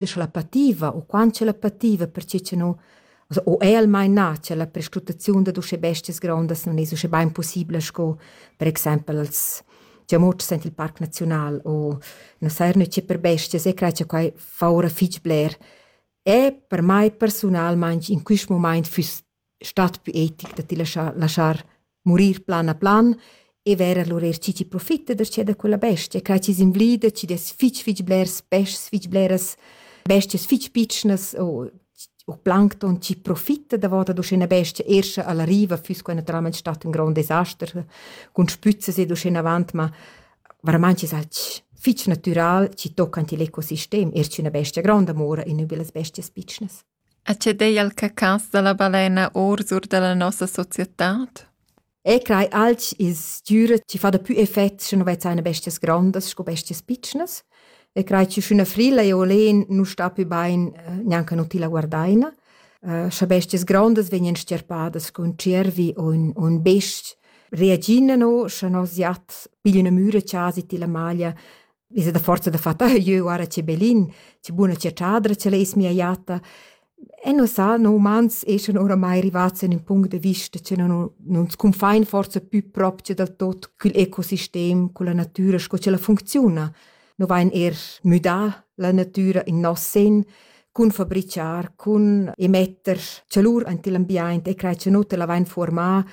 l'eschalapativa u quant ch'elapativa perche cha nu also o è almain na cha la prescrutaziun dad uschè bestias grondas non es uschè bain pussibla sco per exaimpel als giamotschs aint il Parc Naziunal o na sairna che per bestias e crai cha quai fa ora fich bler, è per mai persunalmaing in quist mumaint füss stat pü etic da ti laschar laschar murir plan a plan e vair a lur eir chi chi profita da che da quella bestia quai chi's invlida chi dess fich fich blers peschs fich bleras bestias fich pitschnas o u plancton chi profita davot ad uschè 'na bestia eir scha ella riva füss quai natüralmaing stat ün grond desaster cun spüzzas ed uschenavant ma veramaing es alch fich natüral chi tocca ant il ecosistem eir sch'üna bestia gronda mora e nu be las bestias pitschnas. E che dei al cacans dalla balena orsur dalla nossa societad? E crei alch il stüra chi fa dapü effet sche nu vezza eine bestias grondas sco bestias pitschnas e crei chi sch'üna frilla e olen nu sta pü bain eh, gnanca nu tilla guardaina. Eh, scha bestias grondas vegnan stierpadas cun cervi o ün, ün best, reagina no, scha nos jat piglia üna müra chasi tilla maglia Visa da forza da far ta jeu guarda che belin, che buna chatschadra che leis mia jatta. E nus sa no umans eschan oramai rivats in ün punct da vista che non non scunfain forsa pü propcha dal tot cul ecosistem, culla natüra sco ch'ella funcziuna. No vain eir müdà la natüra in nos sen cun fabrichar, cun emetter chalur aint il ambiaint e crai cha no tela vain fuormà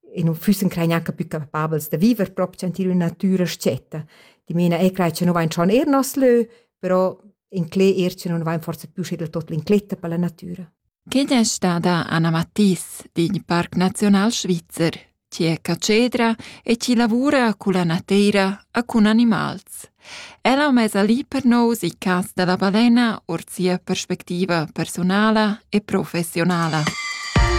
e non füssen crei neanche più capabels da viver proprio sentir una natura scetta. Di mena e crei che non vain schon er nos lö, però in cle er che non vain forse più sche del tot l'incletta per la natura. Quied è stada Anna Mattis digl Parc Nazional Svizzer, ci è cacedra e ci lavora cu la nateira a cun animals. Ella mesa lì per nous i cas della balena or sia perspectiva personala e professionala.